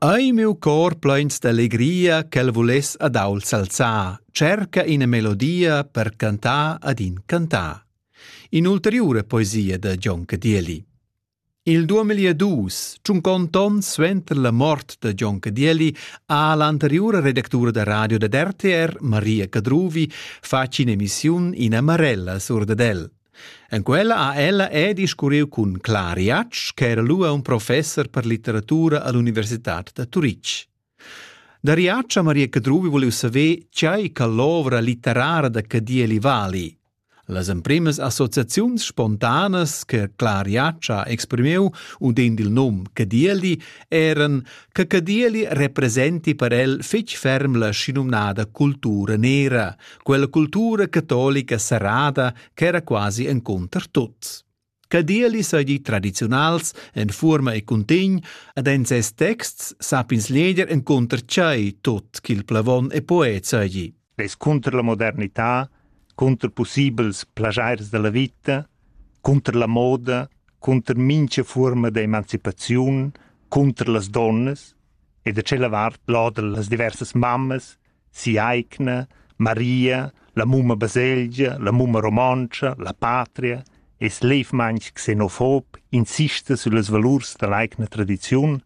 Ei miu cor pleins d'allegria ch'el vuless ad aul s'alzar, cerca ina melodia per cantar ad in cantar. In'ulteriura poesia da Gion Cadieli. Il 2002, tschuncond ton suenter la mort da Gion Cadieli, ha l'anteriura redactura da radio dad RTR, Maria Cadruvi, fatg in'emissiun in amarella sur dad el. En quella ha ella er discurriu cun Clara Jatsch ch'era lura un professer per litteratura all'universitad da Turitg. Da Riaccia Maria Cadruvi volev saver tgei che l'ovra litterara da Cadieli vali. Las emprimas associaziuns spontanas che Clara Jatsch ha exprimiu udend il num Cadieli eran che Cadieli representi per el fetg ferm la schinumnada cultura nera, quella cultura catolica serrada ch'era quasi encunter tuts. Cadeli seigi tradiziunals en fuorma e cuntegn ed en ses texts sapins leger encunter tschei tot ch'il plavon e poet seigi. Es cunter la modernità, cunter possibels plagiairs della vita, cunter la moda, cunter mincha forma de emancipaziun, cunter las donnas e da cella vart lodel las diversas mammas si'aigna, Maria, la mumma baselgia, la mumma romontscha, la patria, es levmaing xenofob insista süllas valurs da l'aigna tradiziun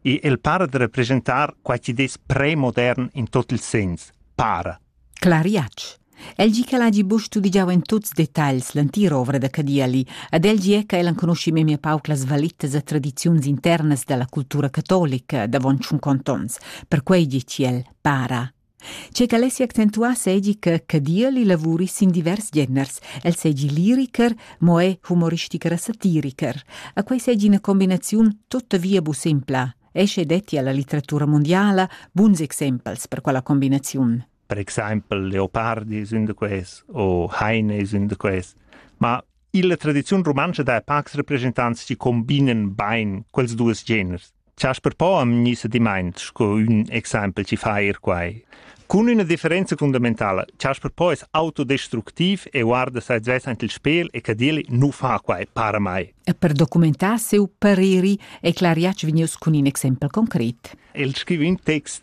e el para da representar quai chi'd es premodern in tot il sens, para. Clariatsch. El gi ch'el hagi buca studigiau en tuts detagls l'entira ovra da Cadieli ed el gie ch'el enconuschi memia pauc las valitas e tradiziuns internas dalla cultura catolica davon tschun contonts, perquei gi ch'el para. Che ch'el essi accentuass seigi che Cadieli lavuri sin divers geners. El seigi liriker, mo è humoristicher e satiriker. A quei seigi una combinaziun tuttavia bu simpla. Esce detti alla litteratura mondiala buns exempels per quella combinaziun. per exaimpel leopardi sün da quels o heine sün da quels ma illa tradiziun rumantscha dai pacs representants chi combinen bain quels duos geners Chasper Po am gnisa dimaint sco ün exaimpel chi fa eir quai. Cun üna differenza fundamentala, Chasper Po es autodestructiv e guarda sai svess ant il spel e cadeli nu fa quai para mai. E per documentar seu pareri è Clariac vegnius cun in exempel concret. El scriva in text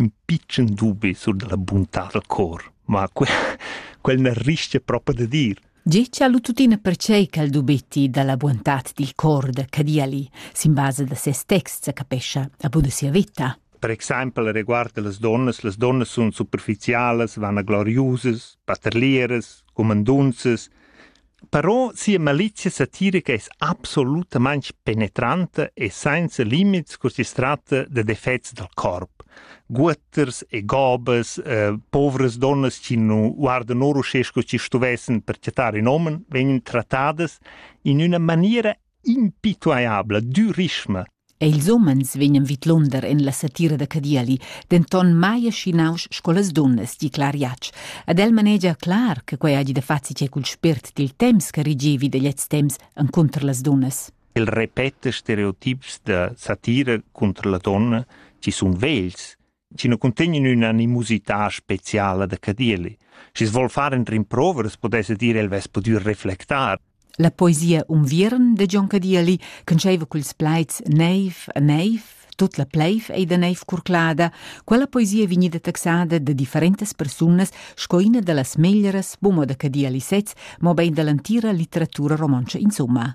ün pitschen dubi sur da la buntà dal cor, ma que quel n'ha rischia propi da dir. Tgi cha lu tuttina pertgei ch'el dubetti dalla buontad dil cor da Cadiali sin basa da ses text sa capescha a buna sia vita. Per exempel riguard las donnas, las donnas sun superficialas, vana gloriusas, paterlieras, cumandunzas, Però sia malizia satirica es absolutamaing penetranta e sainza limits cur chi's tratta da defets dal corp. Guotters e gobas, eh, povras donnas chi nu guardan or uschè sco chi stuvessan per chattar ün omen, vegnan trattadas in üna maniera impituaiabla, d'ürisma Ei ils umens vegnan vidlunder en la satira da Cadieli, denton mai aschinaus sco las dunnas, di Clara Jatsch. Ed el manegia clar che quei hagi da far che cul spirt dil temps che regevi da gliez temps encunter las dunnas. El repeta stereotips da satira cunter la donna, ci sun vegls, chi nu cuntegnan ün'animosità speciala da Cadieli. Schi's vuol far in rimproveres pudesse dire el vess pudür reflectar. La poesia Unviern de John Cadieli conceva culs plaids Neiv, neiv, Tot la pleiv ei da neiv curclada, quella poesia vegnida taxada da differentas persunas sco ina da las meglieras bumo da Cadieli sez, mobein dall'entira litteratura romontscha insomma.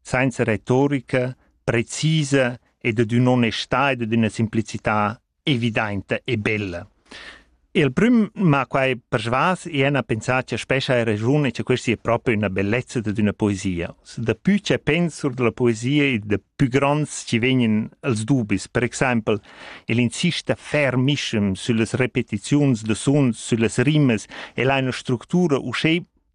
sainza retorica precisa ed ad ün'onestà ed ad üna simplicità evidainta e bella. E il prüm m'ha quai persvas e ena pensà cha spescha hai ragiun e cha questa è proprio una bellezza ad üna poesia. Da pü che pens sur della poesia e da pü gronds ci vegnan els dubis. Per exaimpel, el insista fermischem süllas repetiziuns da suns, süllas rimas, el ha üna structura uschè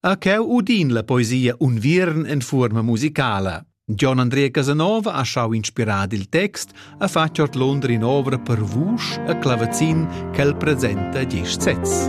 A cheu udin la poesia Unviern en fuorma musicala. Gian Andrea Casanova ha schau inspirar il text, ha fatg ordlunder in'ovra per vusch e clavazin ch'el presenta gest sez.